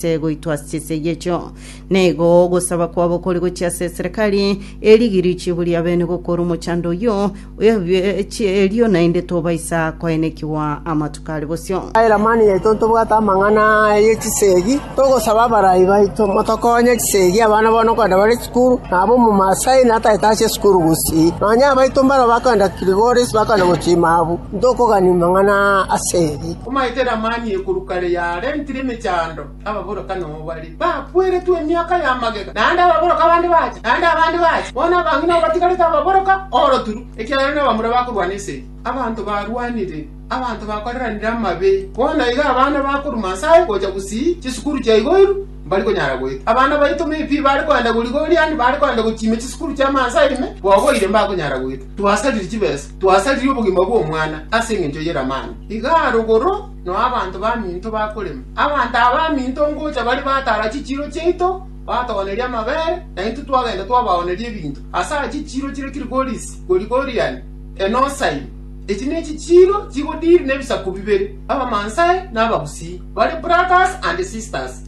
ase goitwa ase chisegi echio. Na igo ogosaba kwabo kore gochia ase eserekari, erigiri richibu ria bene gokora omochando oyio, ebiechie erio naende tobaisa koenekigwa amatuko are bosio. Ase Eramani yaito ntobwate amang'ana aya ye chisegi, togosaba abarai baito motokonye chisegi abana bono kogenda bare chikuru, na aba omomaasai natagete ase esukuru gusii, nonya abaito mbaro bakoenda Kilgoris bakoenda gochia Imabu, ntokogani mang'ana ase eri. Omaete Lamani ekorwa kare yarentire emechando, ababoraka nomo bare, bakweretwe emiaka ya magega, naende ababoraka abande bacha, naende abande bacha, bono abang'ina abatigarete ababoraka oroturu, ekiagera nabamura bakorwana ase eye. Abanto barwanire, abanto bakoreranire amabe, bono iga abana bakoruma Nyasae gocha gusii chisukuru chia igo iru, mbari konyara goeta. Abana baito me pi bare kogenda goriga oriani, bare kogenda gochiimia chisukuru chi'amansa ime, bogoire mbakonyara goeta. Twasarire chibesa. Twasaririe obogima bw'omwana ase engencho y'eramani. Iga arogoro noe abanto baminto bakorema. Abanto aba baminto ngocha bare batara chichiiro chiaito, batogoneria amabere, na intwe twagenda twabaooneria ebinto. Ase aya chichiiro chire Kilgoris, Gorigorian, Enosaim. Echi nechichiiro chigodiri nebisaku bibere, Abamansae na Abagusii. Bare brothers and sisters.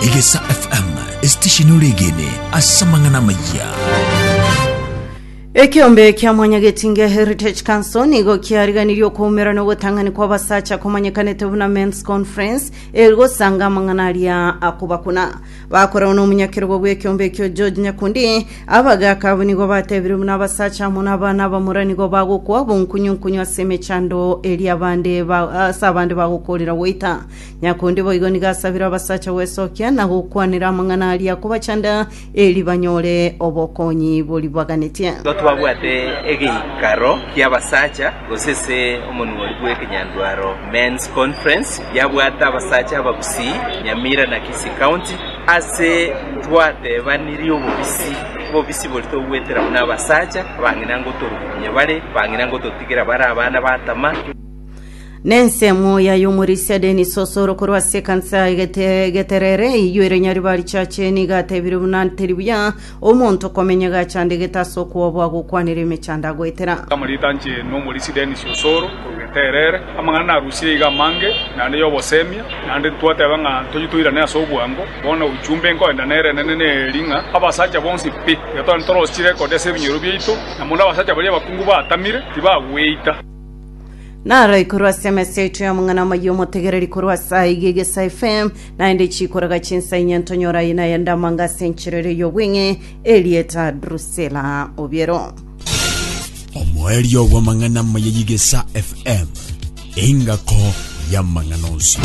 Egesa FM, esitesheni ore egene ase amang'ana amayia. Ekeombe kia Mwanya Getinge Heritage Council nigo kiariganirie okoumera na ogotang'ani kw'abasacha komanyekanete buna Men's Conference eri gosanga amang'ana aria akobakuna. Bakoragwa n'omonyakerogo bw'ekeombe ekio George Nyakundi, abagaaka abwo nigo batebirie buna abasacha amo n'abana abamura nigo bagokwa bonkunyunkunyu ase emechando eria abande ba- ase abande bagokoorera goita. Nyakundi boigo nigo asabire abasacha gwesokia na gokwanera amang'ana aria akobachanda eri banyore obokonyi boribaganetie. Nigo twabwate egeikaro ki'abasacha, gose ase omonuori bw'ekenyandwaro men's conference, yabwate abasacha abagusii Nyamira na Kisii County, ase twateebanirie obobisi bobisi bori togwetera buna abasacha, bang'ina ngotorukunya bare, bang'ina ngototigera bare abana batama. Nensemo yayomorisia Dennis Osoro korwa ase ekansa ya Gete- Geterere eyio ere Nyaribari Church nigo atebire buna teri buya omonto komenya gachandegete ase okwobo agokwanera emechando agoetera. Amarita anche n'omorisia Dennis Osoro korwa Geterere. Amang'ana narusirie iga amange naende y'obosemia naende ntwateba ng'a toiyo toirane ase obwango. Bono ujumbe nkoenda nere enene neri ng'a abasacha bonsi pi iga tore ntorosie rekodi ase ebinyuero biaito na mono abasacha baria abakungu baatamire tibagweita. naroi korwa ase emesa yaito y'omong'ana omoyia omotegereri korwa ase aiga egesa fm naende chikoraga chinsa inye ntonyora aye naye ndamanga ase enchera ere y'obweng'e erieta drusela obiero omoerio bw'amang'ana amaya y'egesa fm engako y'amang'ana onsi